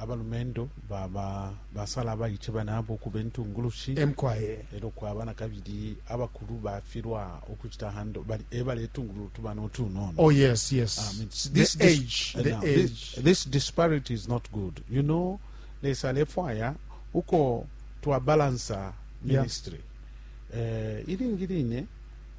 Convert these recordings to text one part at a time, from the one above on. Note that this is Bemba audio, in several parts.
Abalumendo baba basala abaice banabo ukuba intungulushi. e Mukwai. E lyo kwaba na kabili abakulu bafilwa ukucita handle, bali e baletungulula utubana utunono. Oh, yes, yes. I mean, the this, this, age, uh, the now, age. This, this disparity is not good. You know, Lesa alefwaya uko twabalansa ministry. Yeah. Uh, ilingi line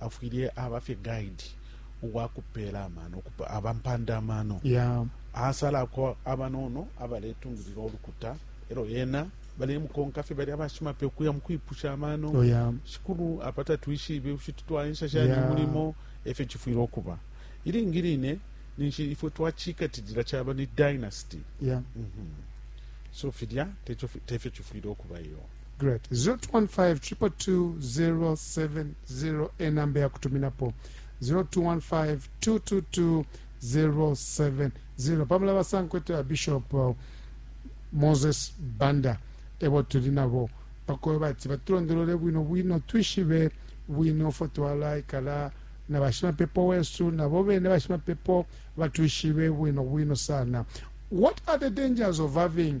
afwile aba fye guide uwakupeela amano aba mpanda amano yeah. asalako abanono abaletungilila olukuta elo yena balemukonka fye bali abashimape ukuya mukwipusha amano oh, yeah. shikulu apa tatwishibe ushiti twaensha shani yeah. mulimo efyo chifwile okuba ilingi line ninshi ifwe twachikatilila chaba ni dynasty yeah. mm -hmm. so filya tefyo chifwile okuba iyo great 0215222070 enamba yakutuminapo 0215222070 pamula basankwete ya bishop uh, moses banda ebo tuli nabo pakoyo bati batulondolole bwino bwino twishibe bwino fo twalaikala na bashimapepo wesu nabo bene bashimapepo batwishibe bwino bwino sana what are the dangers of having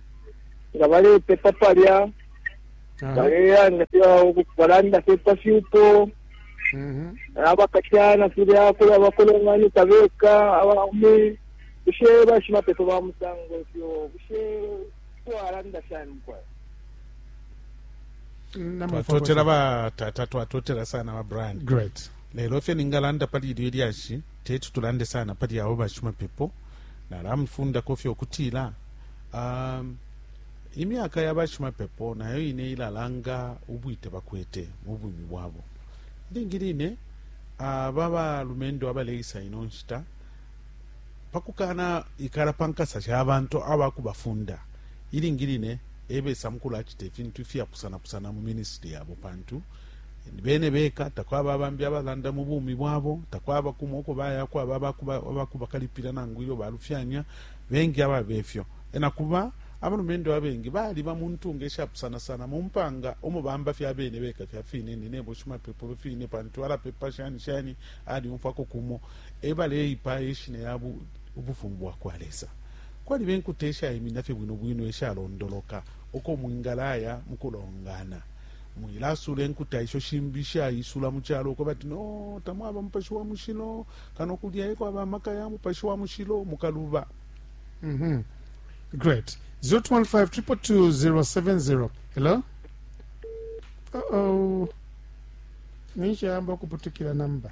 nga balepepa palya balelanda balanda fye pa fyupo mhm. abakashana filya kula bakolonganika beka abaume bushe bashimapepo ba musango fyo bushe twalanda shani kwayo twatotela batata twatotela sana ba brian great lelo fye ningalanda pali ilyo ilyashi teti tulande sana pali abo bashimapepo nalamufundako fye okutila um, imyaka ya bashimapepo nayo ine ilalanga ubwite bakwete mu bumi bwabo ilingi line aba balumendo abaleisa ino nshita pakukana ikala pa nkasa sha bantu abakubafunda ilingi line ebesa mukulu acita ifintu ifyapusanapusana mu minisitiri yabo pantu bene beka takwaba bambi abalanda mu bumi bwabo takwaba kumo uko bayako aba abakubakalipila nangu ilyo balufyanya bengi ababe fyo. Na kuba, abalumendo abengi baliba mu ntunga ishapusanasana mu mpanga umo bamba fye abene beka fya fine, ni nebo shimapepo be fine, pantu alapepa shani shani, alyumfwako kumo, e baleipaya ishina ya Ubufumu bwa kwa Lesa. Kwaliba inkuta ishaiminina fye bwino bwino ishalondoloka uko mwingalaya mu kulongana. Mwilasuula inkuta isho shimbi ishaisula mu calo ukwebati no tamwaba Mupashi wa Mushilo. kano kulya ekwaba amaka ya mupashi wa mushilo mukaluba mm -hmm. great 0215222070 hello uh -oh. ninshayamba okuputukira namba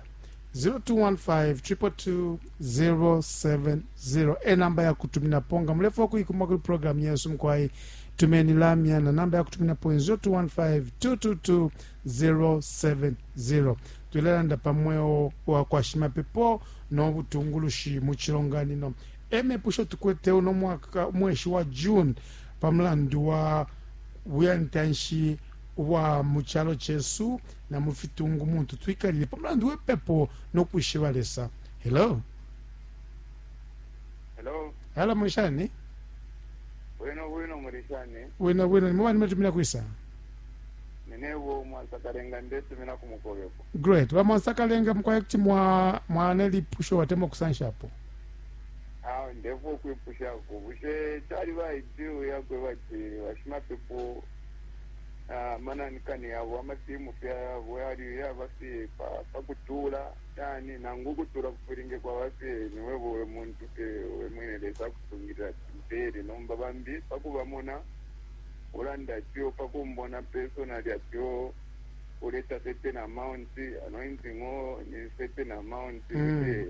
0215222070 e namba ya kutuminapo nga mulefa okuyikuma kuri programu yesu mukwayi tumeni lamya na namba ya kutuminapo 0215222070 070 Tulelanda pa mweo wa kwa shimapepo no butungulushi mu cilonganino e mepusho tukwete uno mwaka, umweshi wa June, pa mulandu wa buyantanshi ubwa mu calo cesu na mu fitungu muntu twikalile pa mulandu we pepo no kwishiba Lesa. Hello. Hello. Hala, muli shani? Bwino bwino, muli shani? Bwino bwino, ni mubani mwatumina kwisa? Ninebo mwansakalenga ndetumina ku mukobeko. Great. Ba mwansakalenga mukwai kuti mwa mwana lipusho atemwa ukusanshapo. Awe ndefwa ukwipushako bushe caliba ideal yakweba ati bashimapepo na manani-kani yabo amatimu fye ayabo yali yaba fye pa pa kutuula shani nangu ukutuula kufilinge kwaba fye niwebo we muntu fye we mwine Lesa akusungilila ati mpeele nomba bambi pa kubamona Ulanda ifyo pa kumbona personally ati oo uleta certain amount, anointing oo ni certain amount. Mm. Eh,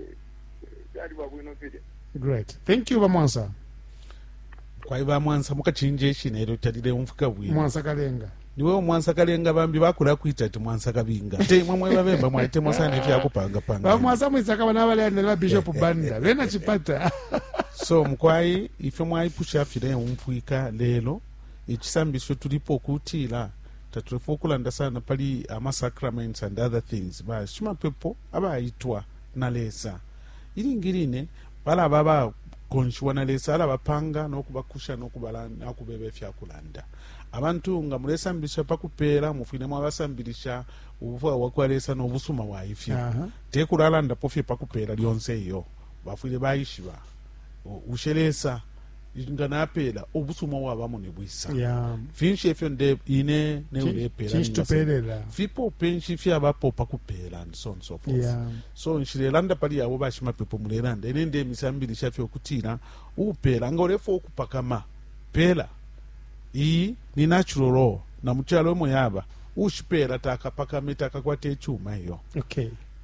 Caliba bwino filya. great thank you bamwansa kwai bamwansa mukachinja eshina elyo talileumfika bwino mwansa kalenga niwe omwansa kalenga bambi bakula kwita ati mwansa kabinga te imwe mwe babemba mwalitemwa sana efyakupangapanga bamwansa mwisakaba nabaleyandela babishop banda bena chipata so mukwai ifyo mwaipusha fileumfwika lelo icisambisho tulipo kutila tatulefa ukulanda sana pali amasacraments and other things bashimapepo abaitwa na lesa ilingi line balaba abakonshiwa na lesa alabapanga nokubakusha nokubeba ifyakulanda abantu nga mulesambisha pakupeela mufwile mwabasambilisha ubufwayo bwa kwa lesa nobusuma bwa ifyo uh -huh. tekulalandapo fye pakupeela lyonse iyo bafwile baishiba o, bushe lesa i- nga napeela ubusuma ubwabamo ni bwisa Yeah. finshi efyo nde ine Chi- neulepeela chinshi tupelela? fipope nshi fyabapo pa kupeela and so on and so forth Yeah. so nshilelanda pali yabo bashimapepo mulelanda ine ndemisambilisha fye ukutila upeela nga ulefa ukupakama peela iyi ni natural law na mu calo emo yaba ushipeela takapakame takakwate icuma iyo Okay.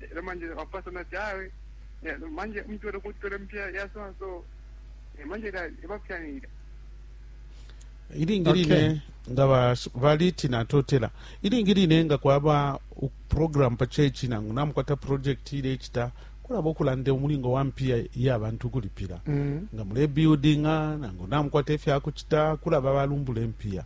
lelo manje wapasa nati awe manje mtu alikutola mpya ya so and so Eh, manje la ebapyanira ilingi line Okay. nga ba- baliti natotela ilingi line nga kwaba u- program pa chechi nangu namukwata project ilecita kulaba okulanda omulingo wa mpiya yabantu ukulipila Mm. nga mulebuildinga nangu namukwata efyakucita kulaba balumbula empiya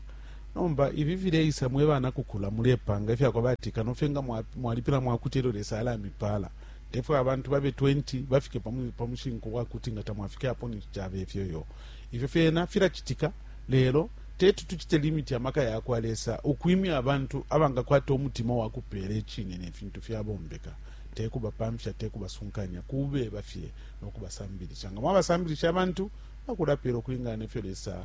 Nomba ifi fileisa mwe bana kukula mulepanga ifya kwa bati kano fye nga mwalipila mwakuti elyo Lesa alamipaala. Tefwe abantu babe 20 bafike pa mushinku wa kuti nga tamwafike apo ninshi cabe fyo iyo. Ifyo fyena filacitika, lelo teti tucite limiti amaka ya kwa Lesa ukwimya abantu abangakwata umutima wa kupeela icine ne fintu fyabombeka, te kubapamfya, te kubasunkanya, kubeba fye no kubasambilisha. Nga mwabasambilisha abantu bakulapeela ukulingana ne fyo Lesa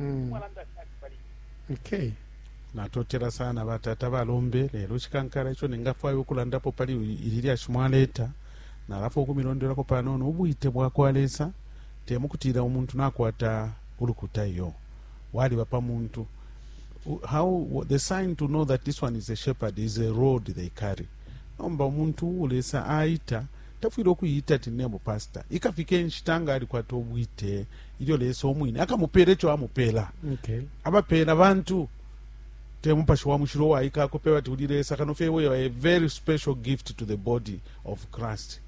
Mm. Okay. natotela sana batata balombe lelo chikankala icho ningafwaya ukulandapo pali ili lyashi mwaleta nalafa ukumilondelako panono ubwite bwa kwa lesa temukutila umuntu nakwata ulukuta iyo waliba pa muntu how the sign to know that this one is a shepherd is a road they carry nomba umuntu ulesa aita Tafwile ukuiita ati ninebo pastor. Ikafika inshita nga alikwata ubwite ilyo Lesa umwine akamupela ico amupela. Okay. Abapela bantu te Mupashi wa Mushilo uwaika akopeba ati uli Lesa kano fye we are a very special gift to the body of Christ.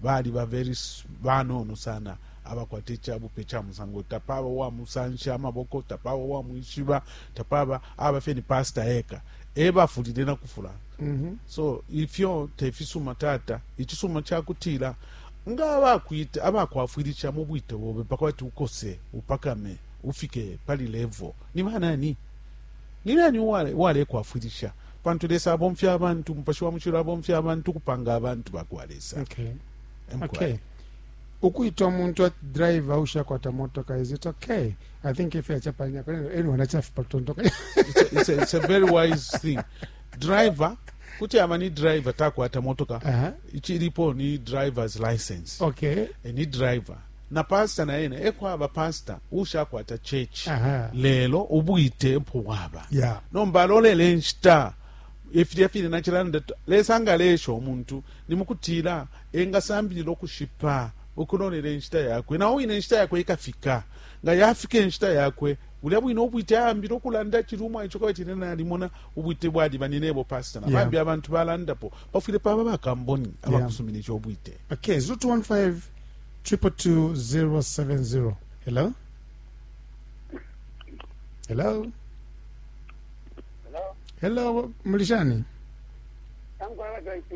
Baliba very banono sana abakwata icabupe ca musango. Tapaba uwamusansha amaboko, tapaba uwamwishiba, tapaba, aba fye ni pastor eka. ebafulile na kufula mm -hmm. so ifyo tefisuma tata icisuma cakutila nga abakwita abakwafwilisha mu bwite bobe pakwati ukose upakame ufike pali level ni banani ni nani walekwafwilisha wale pantu lesa abomfya abantu mupashi wa mucilo abomfya abantu kupanga abantu bakwa lesa okay. Okay. ukwita umuntu ati driver ushakwata motoka is it okay i think if yachapanya kwa neno enu wanachafipa kutontoka it's, a, it's, a, it's a very wise thing driver kuti aba ni driver takwata motoka uh -huh. ichilipo ni driver's license okay e, ni driver na pastor na ene ekwaba pastor ushakwata church uh -huh. lelo ubwite mpo waba yeah. nomba alolele nshita efilya fine nachilanda lesa nga lesha omuntu nimukutila engasambilila ukushipa ukulolela inshita yakwe, na o wine inshita yakwe ikafika. Nga yafika inshita yakwe, bulya bwine ubwite aambila ukulanda acili umwaice, uko batile, Nalimona ubwite bwaliba, ni nebo pastor, na bambi abantu balandapo. Pafwile paba bakamboni abakusuminisha ubwite. Okay, 0215-222-070. Hello? Hello? Hello, Mulishani? Tangu hapa tuwaishi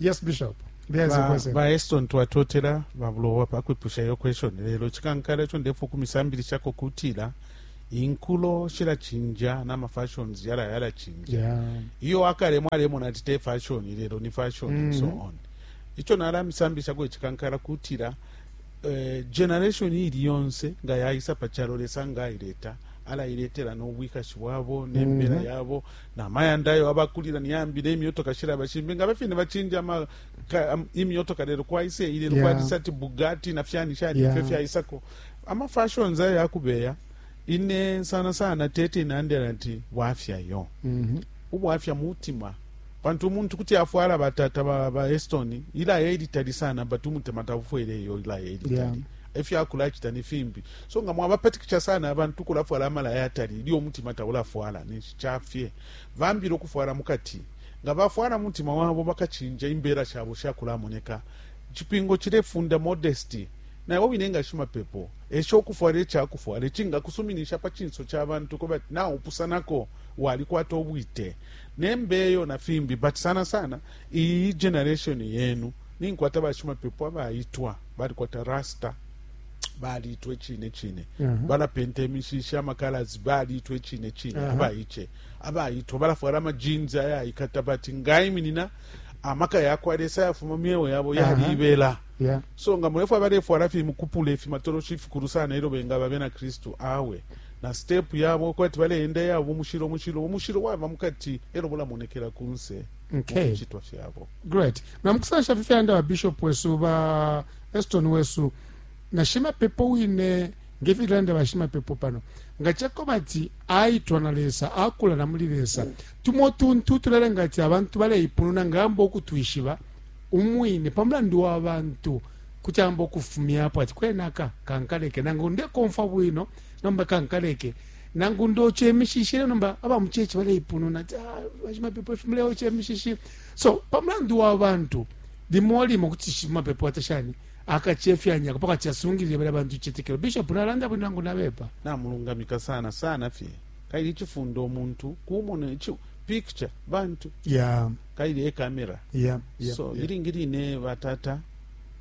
Yes, Bishop. There is a question. Ba Eston twatotela babulo wapa kwipusha yo question lelo chikankala cho ndefu kumisambilisha ko kutila inkulo shila chinja na ma fashions yala yala chinja. Yeah. Iyo akale mwale mona tite fashion lelo ni fashion mm -hmm. and so mm-hmm. on. Icho nala misambilisha ko chikankala kutila eh, generation ili yonse nga yaisa pachalo lesa nga ileta ala iletela no bwikashi bwabo nembera mm -hmm. yabo na mayanda ayo abakulila niyambile imyotoka shilaba shimbi ngaba fine bachinja ama imyotoka lelo kwaise ile yeah. kwalisati bugatti na fyani shani yeah. fyo fyaisako ama fashions ayo akubeya ine sana sana tete inandela nti bwafya yo mm -hmm. ubwafya mutima pantu umuntu kuti afwala batata ba, ba estoni ila elitali sana but umutima tafwele yo ila elitali yeah. efyakula chita ni fimbi so nga mwabapatikisha sana abantu kulafwala amalaya atali ilyo umutima taulafwala ca fye. Bambi no kufwala mu kati. Nga bafwala mu mutima wabo, bakacinja imbela shabo sha kulamoneka. Icipingo cilefunda modesty. Na iwe wine nga shimapepo, esha ukufwala ica kufwala icinga kusuminisha pa cinso ca bantu ukwebati naupusanako, walikwata ubwite. Ne mbeyo na fimbi, but sana sana iyi generation yenu, ninkwata bashimapepo abaitwa, balikwata rasta. balitwe cine cine uh -huh. balapenta imishishi amakalazi balitwe cine cine uh -huh. abaice abaitwa balafwala amajinzi ayaikata bati ngaiminina amaka yakwa lesa yafuma myeo yabo yaliibela uh -huh. yeah. so nga mulefwa balefwala fi mukupula ifi matoloshi ifikulu sana ilo bengaba bena kristu awe na step yabo kwati baleenda yabo mushilo mushilo omushilo wava mukati elo bulamonekela kunse okay. fyabo Great. Na mukusansha fye fyanda ba bishop wesu ba Eston wesu na shimapepo wine ngefilanda ba shimapepo pano nga chako bati aitwa na Lesa akula na muli Lesa tumo tuntu tulelenga ati abantu baleipununa ngamba okutwishiba umwine pamulandu wa bantu kuti amba okufumyapo ati kwenaka kankaleke nangu ndekomfwa bwino nomba kankaleke nangu ndoche mishishi nomba abamuchechi baleipununa ati ah, bashimapepo ifi muleoche mishishi So pa mulandu wa bantu limo limo kuti shimapepo ata shani akachefyanyako paka chasungilile bala bantu chitekelo bishop nalanda bwino nangu nabepa namulungamika sana sana fye kaili chifunda omuntu kumona ichi picture bantu yeah kaili e camera yeah, yeah so yeah. ilingi line batata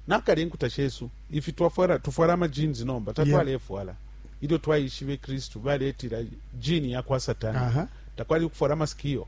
nakale enkuta shesu ifi twafwala tufwala ama jeans nomba tatwalefwala yeah. ilyo twaishibe kristu baletila jini yakwa satana uh -huh. takwali ukufwala masikio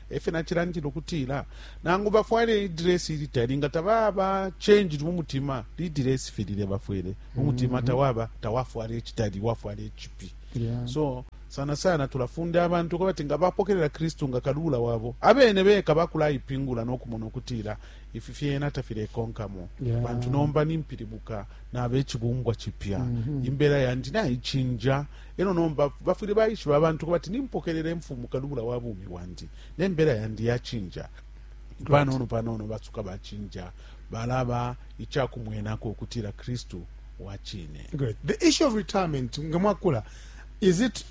E fyo nacilandila ukutila nangu bafwale idresi ili tali nga tababa changed mu mutima, lidresi fye lilya bafwele mu mutima mm-hmm. tawaba tawafwala icitali, wafwala icipi. So sana sana tulafunda abantu ko bati nga bapokelela Kristu nga kalula wabo abene beka bakulaipingula no kumona ukutila ifi fyena tafilekonkamo yeah. bantu nomba nimpilibuka nabe chibumbwa chipya mm -hmm. imbela yandi naicinja Elo nomba bafwile baishiba abantu kubati nimpokelela imfumu kalubula wa bumi bwandi, ne mbela yandi ya cinja. Panono panono basuka ba cinja balaba icakumwenako ukutila Kristu wa cine. Great. The issue of retirement, nga mwakula, is it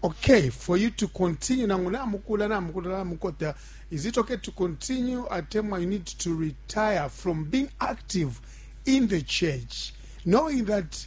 okay for you to continue? Nangu namukula, namukula, namukota, is it okay to continue at time you need to retire from being active in the church, knowing that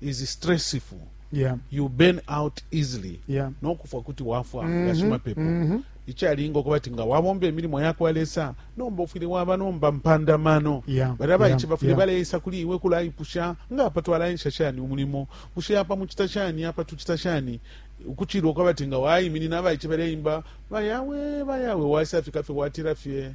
is stressful yeah. you burn out easily yeah. nokufwa kuti wafwa mm -hmm. gashimapepo mm -hmm. ichalinga okuba ti nga wabomba emilimo yakwa lesa nomba ofwile waba nomba mpandamano yeah, bali abaici yeah, bafwile yeah. baleisa kuli iwe kulaipusha nga apa twalaensha shani umulimo bushe apa mucita shani apa tucita shani ukuchilwa okaba ti nga waiminina abaici baleimba bayawe bayawe waisa fika fye watira fye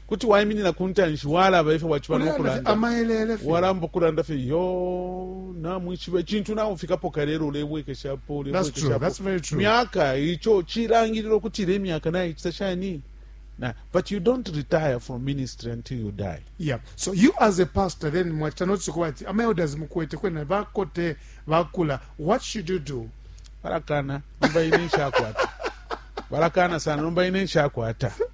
Kuti waiminina ku ntanshi walaba ifyo waciba no kulanda. Walamba ukulanda fye yo namwishiba icintu naufikapo kalelo ulebwekeshapo ulebwekeshapo myaka ico cilangilila ukuti ile myaka naicita shani Nah, but you don't retire from ministry until you die. Yeah. So you as a pastor then mwachita notice kuba ati ama elders mukwete kwena bakote bakula what should you do? Barakana nomba ine nshakwata. Barakana sana nomba ine nshakwata.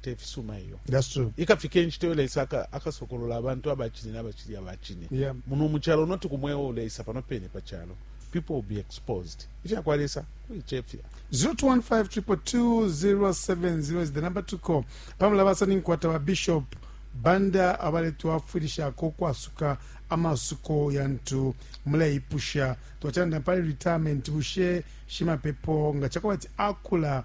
te fisuma iyo ikafika inshita iyo lesa akasokolola abantu abacine n'abacili abacine yeah. muno mu calo noti ku mweo lesa pano pene pa calo people will be exposed ifya kwa lesa kuicefya 0215222070 is the number to call pamela basani nkwata ba bishop banda abaletwafwilishako kwasuka amasuko yantu muleipusha twacanda pali retirement bushe shimapepo nga cakuba ati akula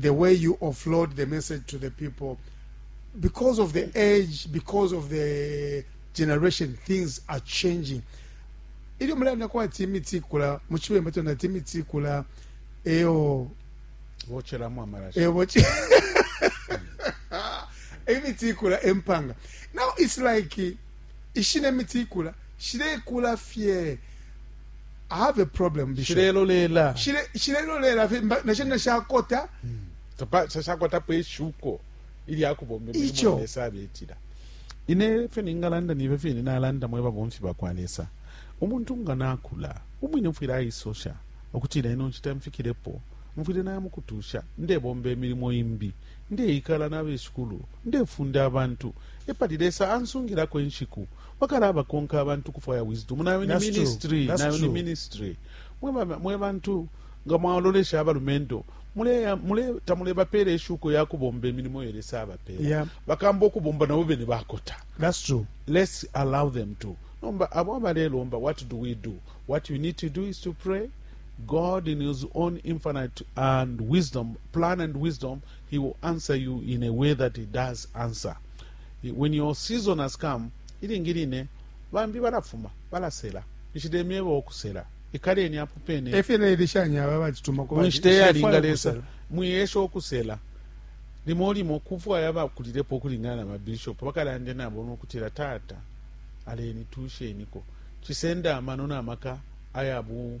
the way you offload the message to the people because of the age because of the generation things are changing ilyo mulanda kwati imiti ikula mu cibemba tona ati imiti ikula eyo bocheramo amarashi eyo boche imiti ikula empanga now it's like ishine imiti ikula shilekula fye I have a problem bishop shilelolela shile shilelolela fye mba- nashe nashakota sasakwatapo ishuko ilya kubomba Icho. imilimo lesa abetila ine fyo ningalanda nibe fine nalanda mwe babomfi bakwa lesa umuntu nga nakula umwine mfwile aisosha ukutila ino nshita mfikilepo mfwile naya mukutusha ndebomba emilimo imbi ndeikala nabeshikulu ndefunda abantu epali lesa ansungilako inshiku bakalaba konka abantu kufwaya wisdom nayo ni ministry nayo ni ministry mwe bantu nga mwalolesha abalumendo tamulebapela eshuko yakubomba emilimo yo lesa abapela yeah. bakamba okubomba nabo bene bakota That's true. let's allow them to nomba abo abalelomba what do we do what you need to do is to pray god in his own infinite and wisdom plan and wisdom He will answer you in a way that he does answer. When your season has come, ilingi line bambi balafuma balasela nishile myeba okusela ikaleni apo pene efye nailishanya aba bacituma ku nshita yalinga lesa mwiyesha okusela limo limo kufwaya bakulilepo okulingana na babishop bakalande nabo nokutila tata aleni tusheniko cisenda amano na maka ayabu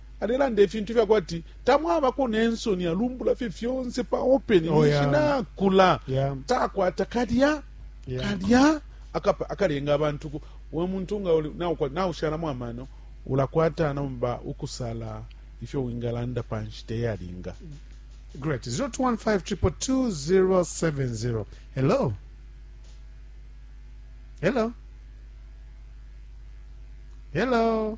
alelanda ifintu fya kwati tamwabako ne nsoni alumbula fye fyonse pa open Oh, ninshi yeah. nakula Yeah. takwata kalya Yeah. kalya akapa- akalenga abantu ku- we muntu nga uli- naukwa- naushalamu amano ulakwata nomba ukusala ifyo wingalanda pa nshita eyalinga Great. 021522070. Hello. Hello. Hello.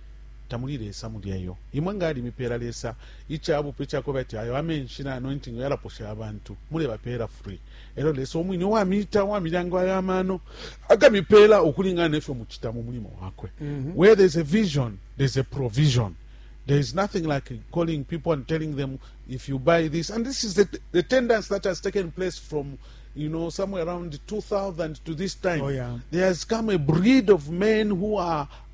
Tamuli Lesa mulya iyo. Imwe nga alimipela Lesa ica bupe cakweba ati ayo amenshi na anointing yalaposha abantu, mulebapela free. Elyo Lesa umwine uwamita, uwamilyango ayo amano, akamipela ukulingana nefyo mucita mu mulimo wakwe. Where there's a vision, there's a provision. There is nothing like calling people and telling them if you buy this. And this is the, the tendency that has taken place from you know, somewhere around 2000 to this time, oh, yeah. there has come a breed of men who are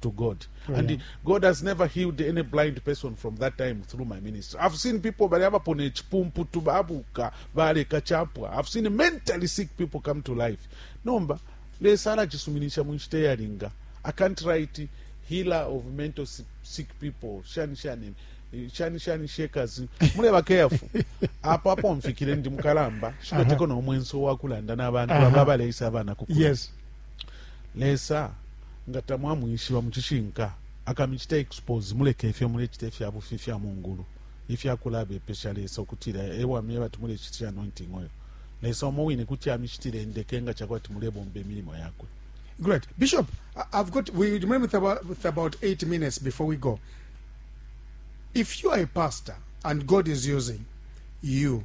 to God. Oh, and yeah. God has never healed any blind person from that time through my ministry. I've seen people bali abapone chipumpu tubabuka bale kachapwa. I've seen mentally sick people come to life. Nomba lesa alachisuminisha munshite yalinga. I can't write healer of mental sick people. Shani shani shani shani shakers. Mule ba careful. Apo apo mfikire ndi mukalamba. Shikateko uh -huh. na omwenso wakulanda na abantu ababa leisa abana kukula. Yes. Lesa nga tamwamwishiba mucishinka akamicita expose mulekefyo mulecita ifyabufi ifya mungulu ifya kulabepesha Lesa ukutila ewa myeba ati mulecitisha anointing oil Lesa umo wine kuti amicitila indeke nga cakwebati mulebomba imilimo yakwe. Great. Bishop, I've got, we remain with about, with about eight minutes before we go. If you are a pastor and God is using you,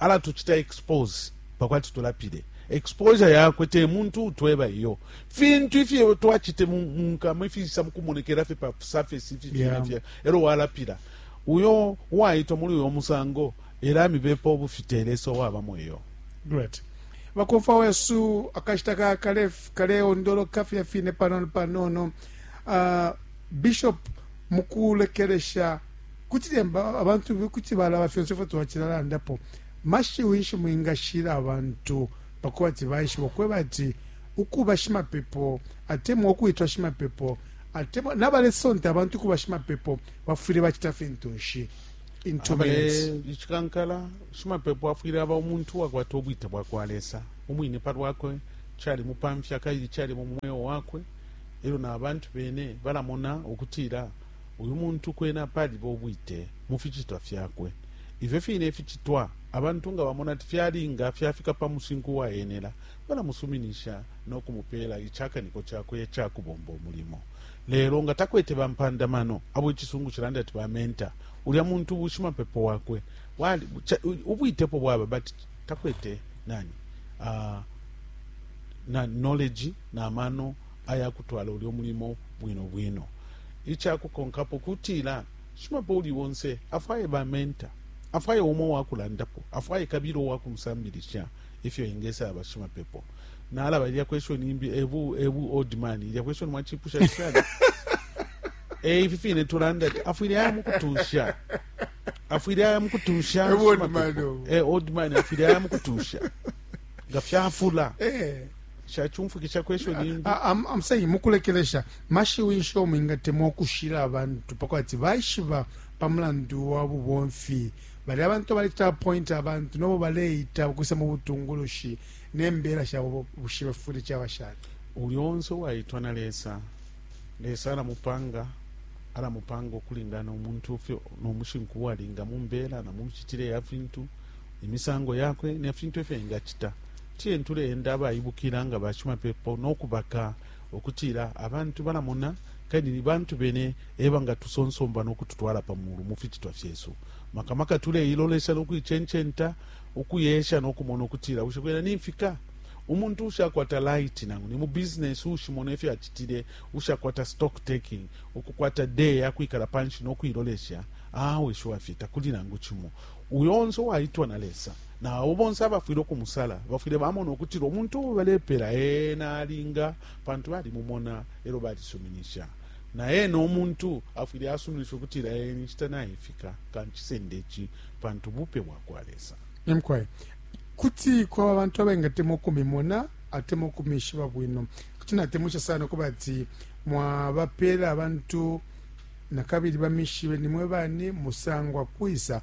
Ala tucita expose pakwati tulapile. Exposure yakwe te muntu utweba iyo. Fintu ifyo twacite mu nkama ifisa mukumonekela fye pa surface ifi fye yeah. fye. Ero walapila. Uyo waitwa muri uyo musango era mibepo bufitele so waba mweyo. Great. Bakofa wesu akashita ka kale kale ondolo kafya fine panono panono. Uh, Bishop mukulekeresha Kuti lyemba abantu kuti balaba fyonse ifyo twacilalandapo. Mashiwi nshi mwingashila abantu pa kubati baishiba ukweba ati ukuba shimapepo atemwa ukwitwa shimapepo atemwa na balesonta abantu ukuba shimapepo bafwile bacita fintu nshi? In two Abe minutes. icikankala shimapepo afwile aba umuntu wakwata ubwite bwa kwa lesa umwine pa lwakwe cali mupamfya kabili cali mu mweo wakwe elyo na bantu bene balamona ukutila Uyu muntu kwena paliba ubwite mu ficitwa fyakwe. Ifyo fine ificitwa abantu nga bamona ati fyalinga, fyafika pa musinku uwaenela, balamusuminisha no kumupeela icakaniko cakwe ica kubomba umulimo. Lelo nga takwete bampanda mano, abo icisungu cilanda ati ba mentor, ulya muntu bushimapepo wakwe bwali, ubwite epo bwaba but takwete nani, uh, na knowledge na mano. aya kutwala ulyo mulimo bwino bwino. Ica kukonkapo kutila, shimapepo uuli onse afwaye ba mentor, afwaye umo uwa kulandapo, afwaye kabilo uwa kumusambilisha ifyo engesaba shimapepo. Nalaba, ilya question imbi e bu e bu old man, ilya question mwacipusha sana. Eh, ifi fine tulanda ati afwile aya mukutusha afwile aya mukutusha Eh, old shimapepo. man, oh. Eh, old man afwile aya mukutusha nga fyafula Eh. amsei mukulekelesha mashiwi nsho mwingatemwa ukushila abantu pakwati baishiba pa mulandu wa bubomfi bali abantu abalecita apointa abantu nobo baleita ukwisa mu butungulushi nembela shabo bushibe fuli caba shani uli onse uwaitwa na lesa lesa alamupanga alamupanga ukulingana umuntu fyo nomushinku walinga mumbela na mumicitile ya fintu imisango yakwe ne fintu efyo engacita Tiyeni tuleenda abaibukila nga bashimapepo no kubaka ukutila abantu balamona kabili ni bantu bene ebangatusonsomba no kututwala pa mulu mu ficitwa fyesu. Maka maka tuleilolesha no kuicencenta ukuyesha no kumona ukutila bushe kwena nimfika? Umuntu uushakwata laiti nangu ni mu business uushimona ifyo acitile, uushakwata stock taking, ukukwata day yakwikala panshi no kuilolesha, awe shuwafye takuli nangu cimo. Uyo onse uwaitwa na Lesa. Na abo bonse abafwile ukumusala bafwile bamona ukutila umuntu uo balepela ena alinga, pantu balimumona elyo balisuminisha. Na ena umuntu afwile asuminisha ukutila ee inshita naifika, kancisende ici pantu bupe bwakwa Lesa. Ee mukwai. Kuti kwaba abantu abengatemwa ukumimona atemwa ukumishiba bwino. Kuti natemwisha sana ukuba ati mwabapela abantu nakabili bamishibe nimwe bani, musangwa kwisa,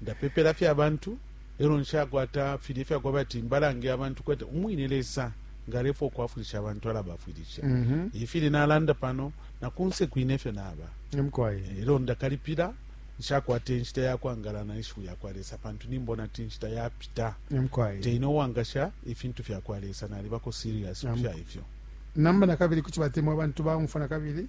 Ndapepela fye abantu, elo nshakwata filye fya kwaba ati mbalange abantu kwete umwine Lesa nga alefwa ukwafwilisha abantu alabafwilisha. Mm -hmm. Ifili nalanda pano na kunse kwine fyo naba. Mkwai. Elo ndakalipila nshakwate nshita ya kwangala na ishiwi ya kwa Lesa pantu nimbona ati nshita yapita. Mkwai. Teine uwangasha ifintu fya kwa Lesa nalibako serious kufya ifyo. Namba na kabili kuti batemwa abantu baumfwa na kabili.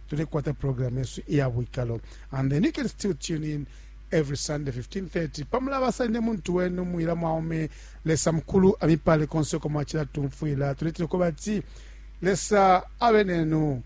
tulekwata program yesu iya bwikalo and then you can still tune in every sunday 1530 pamulabasa ine muntu wenu mwila mwaume lesa mukulu amipale konse uko mwacila tumfwila tuletile kuba ati lesa abe nenu